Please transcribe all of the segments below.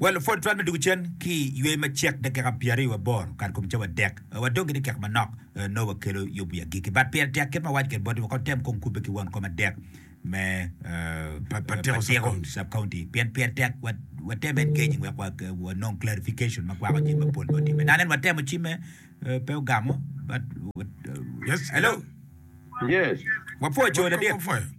Wa lupwod twal me dwogo cen ki i yweyo macek dakika pyeraryo waboro kare kom cawa adek. Wadong gire kek manok nongo wakelo yub wi agikki. But pire tek kit ma awaco kwede boti woko tem kong kubbe ki won kom adek me patiko sub county pien pire tek watem engaging wek wanong clarification ma kwako jami mapol ma otimme. Nano en watemo cimme pe ogamo but hello. Yes. Wapwoco ladit.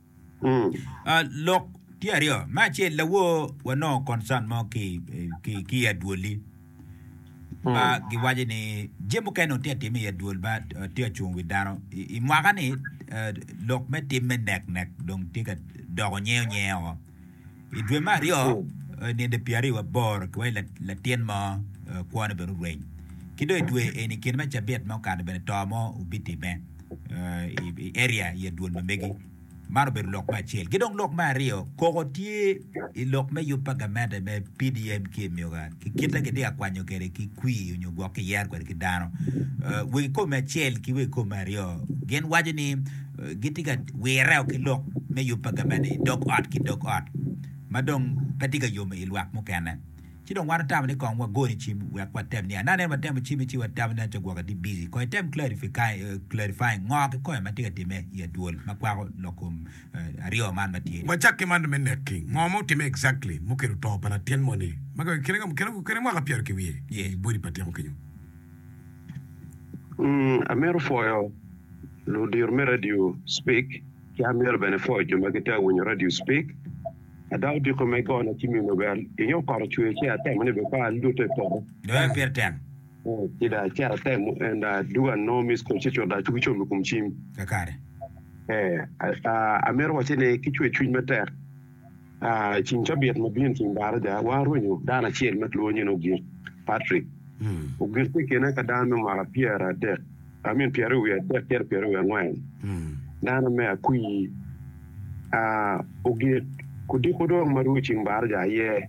Lok tye aryo, me acel lawor wanongo concern mo ki ki ki i adwoli. Ma giwaco ni jami mukene tye ka timme i adwol ma tye ka cung wi dano. I, i mwaka ni eh, lok me tim me nek nek dong tye ka doko nyeyo nyeyo. I dwe me aryo nino pyeraryo waboro ki wai latin mo kwone bene orweny. Ki dong i dwe eni kine ma cabit ma okato bene to mo obitimme i area i adwol ma megi. Man obedo lok me acel. Ki dong lok me aryo koko tye i lok me yub pa gamente me PDM ki emyuka ki kite ma kitye ka kwanyo kwede ki kwir nyo gwok kiyero kwede ki dano. Wegi kome acel ki wegi kome aryo gin waco ni gitye ka wireo ki lok me yub pa gavene i dog ot ki dog ot ma dong pe tye ka yomo i lwak mukene. Ci dong wan watamo ni kong wagone cim wek watem niang. Nano en watemo cimme ci watamo ni aco gwokke tye busy. Kong item clarifying ngo ki kome ma tye ka timme i adwol ma kwako lok kom aryo man ma tye ni. Wacak ki man me neki, ngo ma otimme exactly mukelo to pa latin moni ma kine mwaka pyero ki wiye i body pa tyeko kenyo? Amito pwoyo ludito me radio cipik ci amito bene pwoyo jo ma gitye ka winyo radio cipik. Ada odiko me gona ci mine bene pinge okoto ocwer ci atemo ni bene pe alute i poto ci dong acito atemo en dong adwogo anongo miss call ci dong acung ki com i kom cim. Amito wacci ni ki cwer cwiny matek. I ceng cabit ma bino, Ceng Baraja, warwenyo dano acel ma kilwongo nying Ogik Patrick. Ogik tye i kine ka dano me mwaka pyeradek, I mean pyeraryo wiye adek cito pyeraryo wiye angwen. Dano me Akwir. Ogik odiko dong ma rwod Ceng Baraja aye.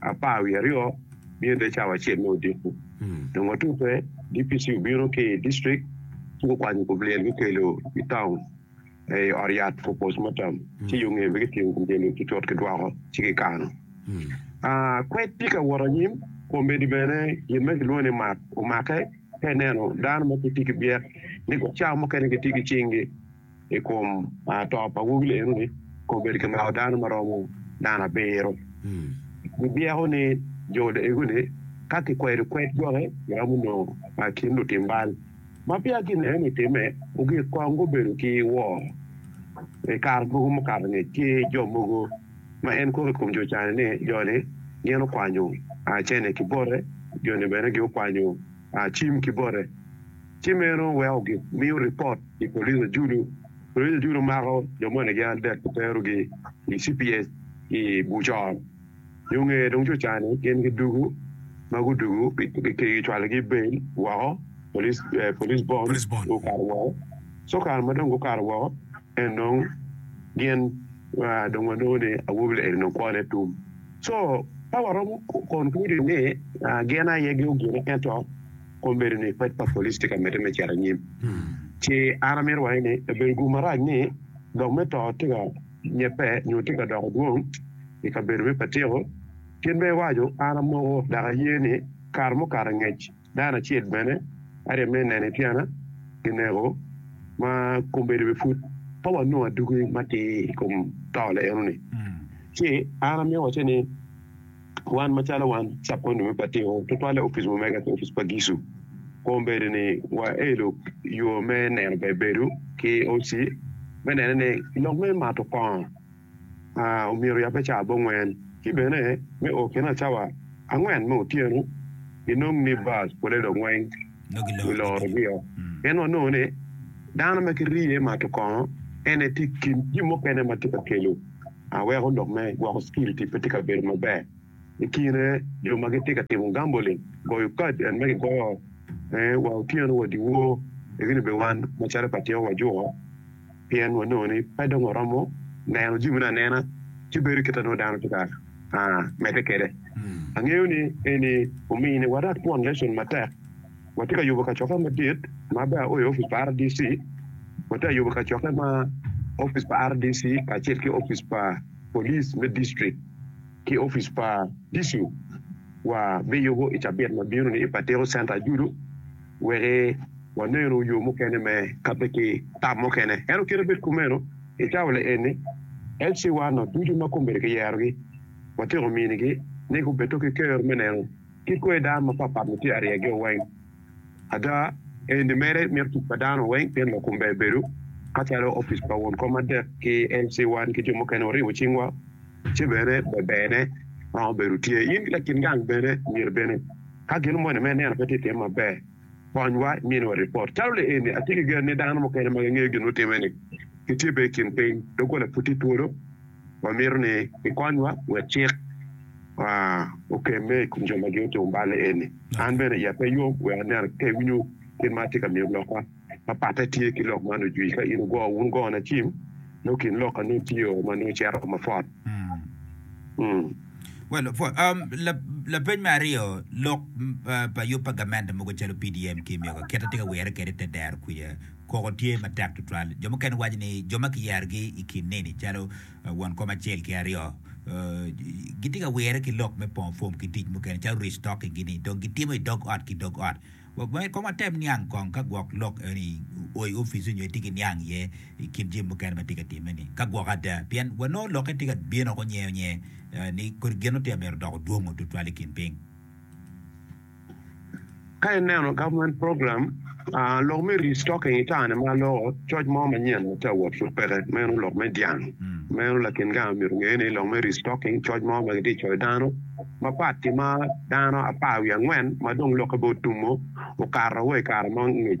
apar wiye aryo bino te cawa acel me odiko. Dong watute, DPC obino ki i district ci gukwanyo kom lyel gukelo i taun i ot yat for postmortem ci yo nge pe kitingo kom lyel-li tutut kidwoko ci kikano. Kwed tye ka wot anyim, komedi bene gin ma kilwongo ni mak omake ka ineno dano ma gitye ki byek ni gucawa mukene gitye ki cinggi. i kom to pa awobi eno-ni kong obedo kimako dano ma romo nano abiro. Gibyeko ni jo Daegu-ni ka kikwedo kwed gwoki giromo nongo pa kin lutim bal. Ma peya gin eno-ni otimme, ogik kong gubedo ki woro. I kare mogo mukato ngec, tye jo mogo ma en koko i kom jo cani ni jo-ni gin okwanyo cene ki bote, jo-ni bene gin okwanyo cim ki bote. Ci meno weko gimiyo ripot i police Ajulu. Police Ajulu mako jo moni gin adek ki terogi i cps i Bucor. Nyo nge dong co ca ni gin gidugu, ma gudugu gicwalogi bail woko, police bond gukato woko. Co kare ma dong gukato woko en dong gin dong wanongo ni awobi eni dong kwone tum. Co ka waromo konkludu ni gin aye gin ogine ento. Kong bedo ni pec pa police tye ka medde me cito anyim, ci an amito wange ni obedo gum marac ni lok me to tye ka nyebbe nyo tye ka doko dwong i kabedo me Patiko. Kit ma iwaco, an amoko dok aye ni kare mukato angec dano acel bene arye me neno i tyena kineko ma kombeddi bene pud pe wanongo aduki matir i kom to leenoni. Ci an amito wace ni. Wan macalo wan cakonyo me batiko, tutwalle opic ma omega ki opic pa Gicu. Kom bedo ni waelo yo me neno ber bedo ki OC me nene ni lok me mato kongo omyero oyabbe cawa abongwen ki bene me o kine cawa angwen me otyeno inong ni bus pole dong weng giloro gi o. Pien wanongo ni dano ma ki riye mato kongo en aye tye kin jin mukene matye ka kelo. ma weko lok me gwoko security pe tye ka bedo maber. I kine jo ma gitye ka timo gambling, goyo kad en ma kigoyo wa otyeno wa dyewor egi ni bene wan macalo pa tyeko wajuko pien wanongo ni pe dong waromo neno jami ne anena ci bedo kit ma nongo dano tye ka medde kwede. Angeyo ni eni ominiwa rak twon lesson matek. Watye ka yubo kacokke madit ma bene oa i opic pa RDC. Watye ka yubo kacokke ma opic pa RDC kacel ki opic pa police me district ki opic pa disu wa biyubo i cabit ma bino ni i Patiko Center Ajudu weki wanenu yo mukene me kabbe ki tam mukene. Ento kit abed kumeno, i cawa le eni HC wa no ducu ma komiti ki yerogi watyeko minigi ni gubed to ki ker me neno Kit kwer dano mapatpat-ni tye aryegio weng. Ada, enni mere mito tic pa dano weng pien lakumber ebedo, ka calo opic pa won kom adek ki LC wan ki jo mukene waribo cingwa, ce bene beberne ma obedo tye in ki lakin gang bene myero bene ka gin omoni ma ineno pe tye tim maber, konywa iminiwa ripot. Calo le enni, atye ki gen ni dano mukene ma gingeyo gin mutime-ni gitye bene i kin piny, doggola pud tye twolo. Wamito ni ikonywa wek cik okemme i kom jo ma giotum balle eni. An bene iya pe yom wek aneno ka iwinyo kit ma atye ka miyo lokka. Ma patte tye ki lok man ojwi ka in wugo wun gona cim nongo kin lok ka nongo tye o ma nongo cito mapwot. Mm. Well, pwod. Um, la, lapeny me aryo, lok pa yub pa gamente mogo calo PDM ki Myoga, kite tye ka wire kede te dero kwica. Koko tye matek tutwal. Jo mukene waco ni jo ma kiyerogi i kin neni calo won kom acel ki aryo gitye ka wirre ki lok me pongo fom ki tic mukene calo restocking-gi-ni dong gitimo i dog ot ki dog ot. Myero kong watem niang kong ka gwok lok eni oo i opic-ci nyo itye ki niang iye i kin jami mukene ma tye ka timme-ni ka gwok ada pien wanongo lokke tye ka bino woko nyengo nyengo ni kodi gin nongo tye ka mito doko dwongo tutwal i kin piny. Ka ineno government program lok me restocking itane ma loko coc mo manyen ma tye awot pud peke meno lok me dyang meno lakin gang myero onge ni lok me restocking coc mo ma gitye coyo dano mapat ki ma dano apar wiye angwen ma dong lokke bene otumo okato wa i kare mo ngec.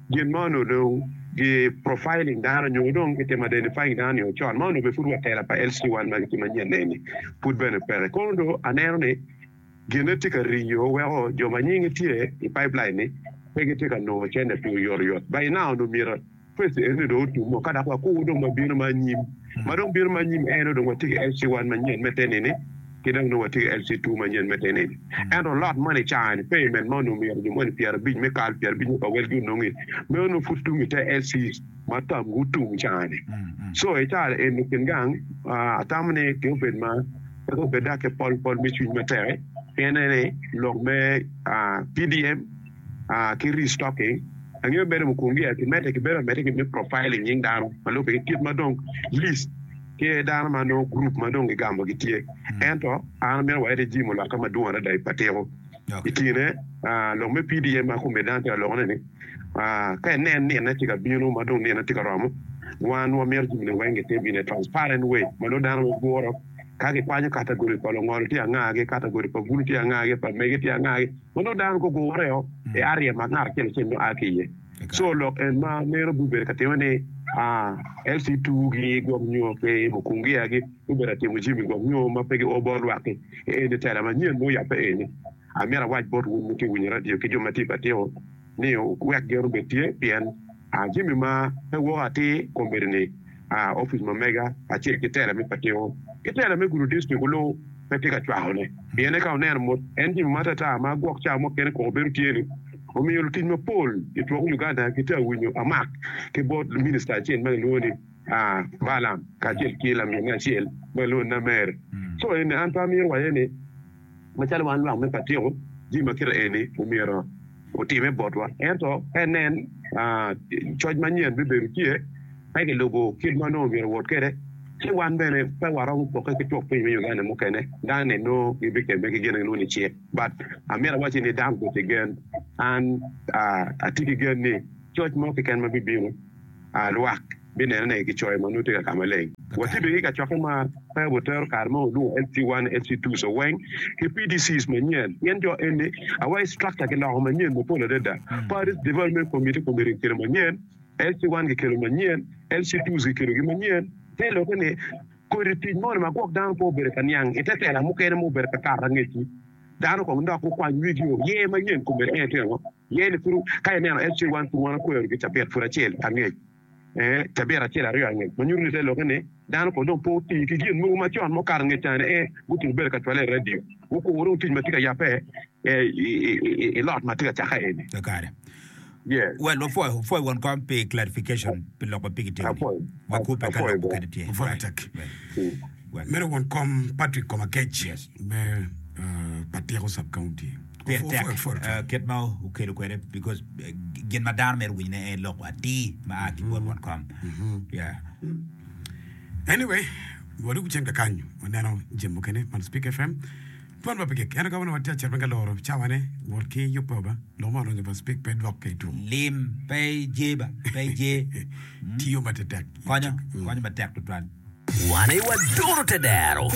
Gin ma onongo dong ki profiling dano nyo dong ki timo identifying dano nio con ma onongo bene pud wa tela pa LC one ma gitimo anyen eni pud bene peke. Kono dong aneno ni gine tye ka riyo weko jo ma nying gi tye i pipeline ni pe gitye ka nongo cente pi oyot oyot. By now onongo myero phase eni dong otum o ka dok wakur dong ma bino ma anyim. Ma dong bino ma anyim en onongo watye ki LC one manyen me te nini. Ki dong nongo watye ki LC two manyen me tenin. Ento lot moni i caa-ni, payment ma onongo myero jo moni pyerabic me kal, pyerabic me bawel gi onongi, meno nongo pud tung i te LC ma tam gutum i caa-ni. Co i caa eni kin gang, atamo ni pe obed ma, pe obed dok ki pol pol me cwiny matek-ki, pien aneno ni lok me PDM ki restocking, angeyo mere mukungi aye kimedde, kibedo ameda ki me profiling nying dano ma lubbe ki kit ma dong list. Tye iye dano ma nongo gurup ma dong gigamo gitye, ento an amito wayad i jim olokke madwong adada i patiko. I kine, lok me PDM ma kome dano tye ka lokone ni, ka inen nine tye ka bino ma dong nine tye ka romo, wan wamito jami-ni weng gitim in a transparent way ma nongo dano weng guro ka gikwanyo katagori pa lungolo tye angagi, katagori pa bulu tye angagi, pa mege tye angagi ma nongo dano gugureo i area ma ngat acel acel nongo a ki iye. Co lok en ma meno gubedo ka timme ni LC tugi gwok nyo pe mo kung gia gi gubedo ka timo jami gwok nyo ma pe gio bot lwak ki. Eni tela manyen ma oyape eni. Amito awac bot wun ma giwinyo radio ki jo ma tye i batiko ni wuwek gen obed tye pien jami ma pe woko atir kombeddi ni a opic ma mega acel ki tela me patiko ki tela me gudo dictrik oluw pe tye ka cwako ne pien eka oneno mot en jimi ma atata ma gwok cawa mukene koko bedo tye ni omiyo lutic ma pol i twok Uganda ki tye awinyo amak ki bot minister acel ma kilwongo ni a Balam kacel ki lamin ne acel ma kilwongo ni Namere so eni an pe amyero waye ni Macalo wan lwak me Patiko, jami ma kite eni omyero otimme botwa. Ento ka inen, coc manyen bibedo tye ka kilubo kit ma nongo myero owot kwede. Ci wan bene pe waromo pokke ki twok piny me Uganda mukene. Dano-ni nongo gibikemme ki gin ma gilwongo ni cik. But amito awacci ni dano obed ki gen. An atye ki gen ni coc mo keken ma bibino, lwak. binenone ki coyo ma nongo tye ka ka maleng. Watibbe ki kacokke ma pe watero kare ma walwongo FC one, FC two, Soweng, ki PDCs manyen pien jo eni awa i structure kiloko manyen mapol adada. Parish Development Committee Committee kikelo manyen, FC one kikelo manyen, FC twos kikelogi manyen. Pe ilokke ni kodi tic moni ma gwok dano pe obedo ka niang i te tela mukene ma obedo ka kato angecci, dano kong dok gukwany wigio, ye manyen kome en tye ango? Yen kuru ka ineno en ci wan kuru wan okweyo gi cabit pud acel angec, ee, cabit acel aryo angec, ma nyuto ni te lokke ni dano kono dong pe oti ki gin mogo ma con ma okato nge caa ni ee gutum bedo ka cwale i radio. Wukuru dong tic ma tye ka yabbe i lot ma tye ka cakke eni. Kakare. Yeah. Well, wapwoyo, wapwoyo won kom pi clarification pi loko pi kitiyo ni. Apwoyo. Wakubbe ka Apwoyo lok bro. mukene tye. Apwoyo Right. tek. Well, Mm. well. Medo won kom Patrick Komakec Yes. me ah, pa Tyeko Sub County. Pire tek kit ma okelo kwede because gin ma dano mito winyo ne en lok atir ma a ki bot won kom. Yeah. Anyway, wadwogo cen kakanyo waneno jami mukene man Speak FM. Tuan pa pigik eno ka wan watye acel ka loro cawane wot ki yubbe ba lok ma olonyo pa Speak pe dwok ka i tum. Lim pe je ba pe je. Tiyo ma tetek. Konyo konyo matek tutwal. Wane waduro te dero.